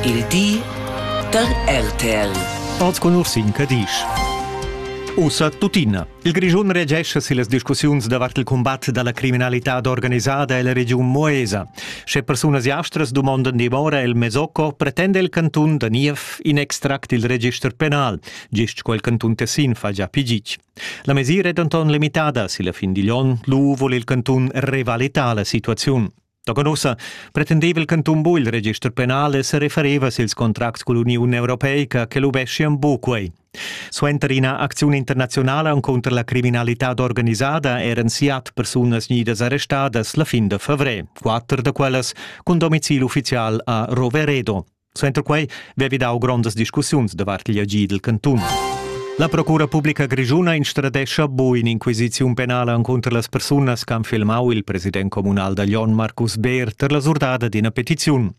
Il di da RTL. Oz con Ursin Cadisch. Ussa tuttina. Il Grischun regescha si las discussiuns davart il combat dalla criminalità organisada ella regiun Moesa. Sche persunas jastras dumondan dimora el Mesocco, pretende il cantun da Niev in extract il register penal, gist quel cantun Tessin fa già pigic. La mesira è denton limitada. Si la fin digl onn lu vul il cantun revalitar la situaziun. Tochen ussa pretendeva il cantun bu il register penal e serefereva sils contracts cull'Uniun Europeica che luveschien bu quei. Suenter ina acziun internazionala contro la criminalità organisada eran siat persunas nidas arrestadas la fin de fevrè, quatter da quellas cun domicil ufficial a Roveredo. Suenter quei vevi dau grondas discussiuns davart igl agid dil cantun. La Procura publica grischuna instradescha bu in'inquisiziun penala encunter las persunas che han filmau il president communal da Glion Marcus Beer per la surdada d'ina petiziun.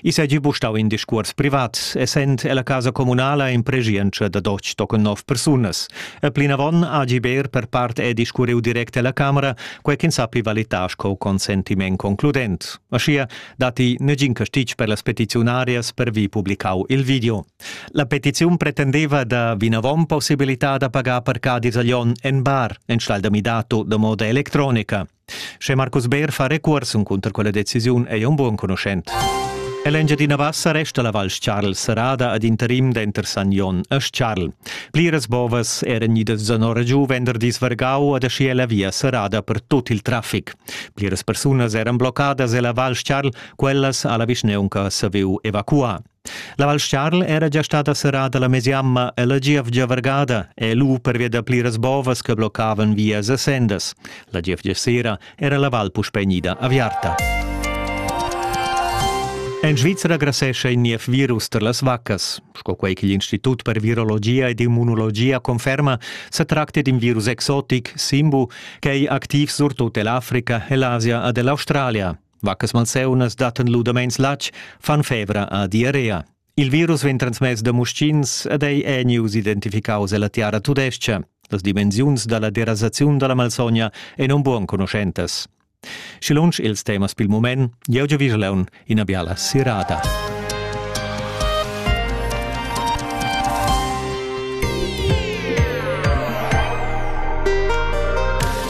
I segi bu stau in discuors privat, essend ella casa communala in preschientscha da doc tochen nov persunas. E plinavon agi Beer per part è discurriu direct ella Camera, quei ch'ins sappi valitar sco consentiment concludent. Aschia datti negin castitg per las petiziunarias per vi publicau il video. La petiziun pretendeva da vinavon possibilità da pagar per Cadi Zaglion en bar enstall da midato da moda electronica. Sche Markus Beer fa recursum cunter quella decisiun è un buon conoscent. L'Engiadina Bassa resta la Val Charl serrada ad interim denter San Jon e Charl. Pliras bovas eran idas zanora giu venderdis vargau ad aschi la via serrada per tut il traffic. Pliras persunas eran bloccadas ella Val Charl, quellas ha la vischneunca saviu evacuar. La Val Charl era già stada serrada la mesiamma e la gievgia vargada è lu pervia da pliras bovas che bloccavan vias e sendas. La gievgia sera era la val puspei gnida aviarta. En Svizra grasescha in niev virus tar las vaccas. Sco quei che l'Institut per virologia ed immunologia conferma, sa tracta d'in virus exotic, Simbu, Quei activ surtut ell'Africa e l'Asia ed ell'Australia. Vaccas malseunas dattan ludameins latg, fan fevra a diarrea. Il virus vegn transmess da muschins ed ei è news identificaus ella tiara tudescha. Las dimensiuns dalla derasaziun dalla malsogna ein un buon conoschentas. Schi lunsch ils temas pil mument, jeu giu vigelaun ina biala sirada.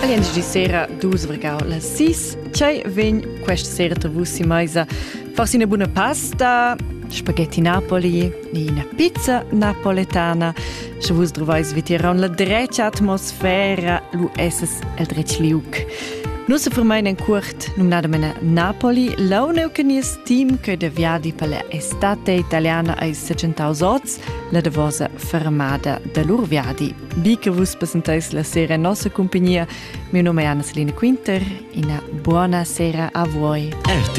Aliens di sera dus vergau las sis. Tgei vegn questa sera tra vus in meisa? Forse una buona pasta, spaghetti Napoli, una pizza napoletana. Sche vus trovais vitier la drecha atmosfera, lu esses el dretg liuc. Nu se fermain en cuort, numnadamene Napoli, launeu che nies team che de viadi per la estate italiana ai 700 oz, la davosa fermada de lur viadi. Bi che vus presentais la sera nossa compagnia, mio nome è Anna Selina Quinter, una buona sera a voi. RTL